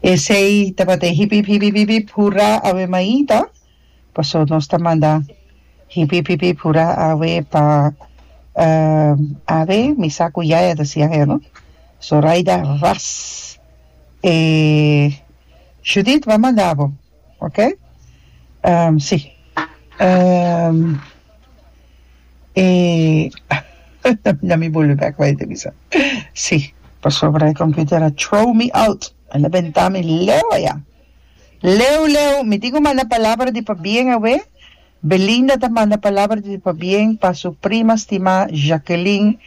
Esei tabata e hip-hip, hip-hip, hip-hip, hurá, awe maita. Paso nos ta manda hip-hip, hip-hip, hurá, awe pa awe, mi sa ku yaya ta siña hel, no? Zoraida, ras! E Judith, bo a manda bo. ok si e nan mi bolbe bek wei te bisa si pasobra e computer a trow mi out el a benta mi leu aya leu leu mi tin cu manda palabra di pabien awe Belinda ta manda palabra di pabien pa su prima stima Jackeline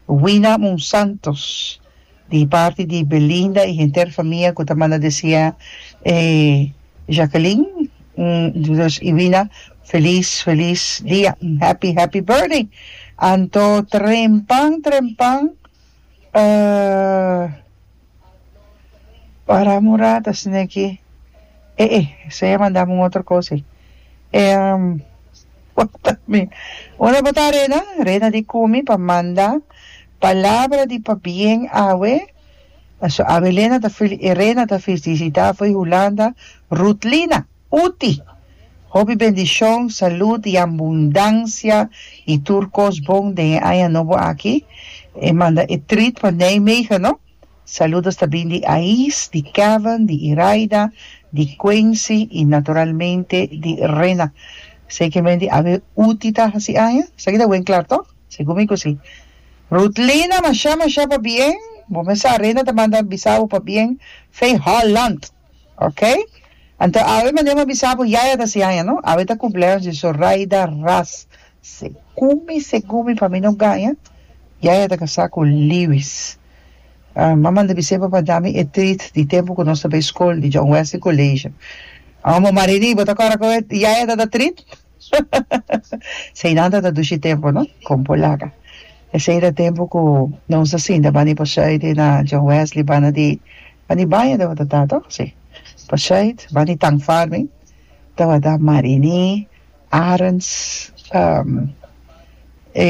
Wina Monsantos Di parti di Belinda y henter famia cu ta manda desea e Jacqueline Entonces y Wina feliz feliz dia happy happy birthday anto trempan trempan para mora ta sne aki e e esai a mandami un otro cos ey Una bota Rena Rena di cumi pa manda. Palabra di pabien awe. Aso awe Lena ta fili e rena ta filisita foi Hulanda Rutlina uti hopi bendishon salud y ambundancia y tur cos bon den e aña nobo aki e manda e treat pa Nijmegen no saludos ta bin di Ais di Kevin di Iraida di Quency y naturalmente di Rena esaki men di awe uti ta hasi aña esaki ta wen klar tok. Si cu mi cu si. Ruthlina masha masha pa bien bo mes sa Rena ta manda bisa bo pa bien fey Holland ok anto awe mende bo bisa bo yaya ta si aña no awe ta cumpleaños di Zoraida Ras segun mi segun mi pa mi no gaña yaya ta casa cu Lewis ah m'a manda bise bo pa dami e treat di tempo cu nos ta bay school di John Wesley College aun bo marini bo ta cora cu yaya ta da treat. Seinanta ta dushi tempu no con por laga esey era tempu cu nos a sinta bani pa Shuite na John Wesley banda di bani baña tabata ta to si pa Shuite bani Tank Farming tabata Marini Arends e